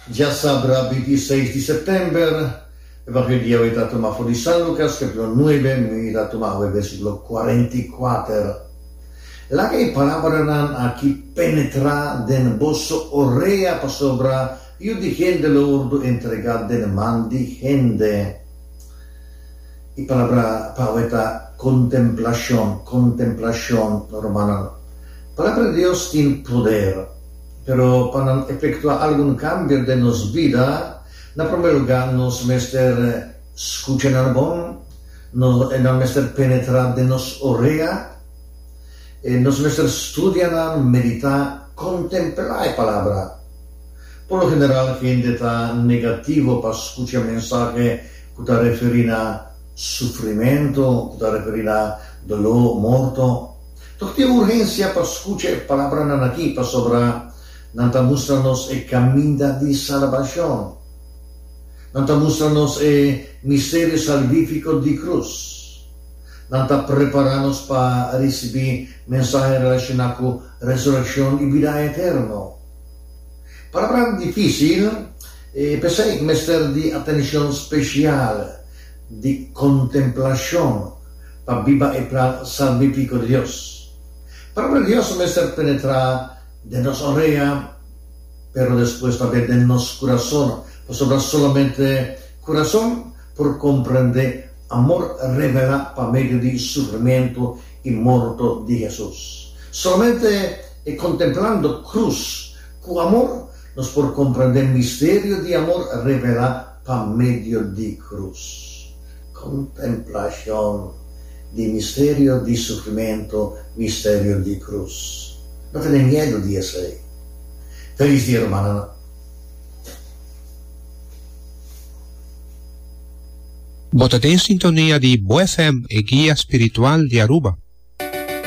Djasabra binti i seis di September, e bak'é dia awé ta tuma for di San Lukas kapítulo nuebe, mi ta tuma awé bèrsikulo kuarenta i kuater. Laga e parabranan aki penetrá den boso orea pasobra Yu di Hende lo wòrdu entregá den man di hende. E palabra pa awe ta kontemplashon, kontemplashon, rumannan. Palabra di Dios tin poder, pero pa nan efektuá algun kambio den nos bida, na promé lugá nos mester skucha nan bon, nan mester penetrá den nos orea, nos mester studia nan, meditá, kontemplá e palabra. Por lo general hende ta negativo pa skucha mensahe ku ta referí na sufrimentu, ku ta referí na doló, morto. Tok tin urgensia pa skucha e palabranan akí, pasobra nan ta mustra nos e kaminda di salbashon. Nan ta mustra nos e misterio salvífiko di krus. Nan ta prepará nos pa risibí mensahe relashoná ku resurekshon i bida eterno. Palabran difícil, e pesey cu mester di atencion special, di contemplacion pa biba e plan salvifico di Dios. Palabra di Dios mester penetra den nos orea, pero despues tambe den nos curason, pasobra solamente curason por comprende amor revela pa medio di sufrimento y morto di Jesus. Solamente. E Contemplando Cruz cu Amor nos por comprende misterio di amor revela pa medio di cruz. Contemplacion di misterio di sufrimento, misterio di cruz. No tene miedo di esei. Felis dia rumananan. Bo ta den sintonia di Bo FM, e guia spiritual di Aruba.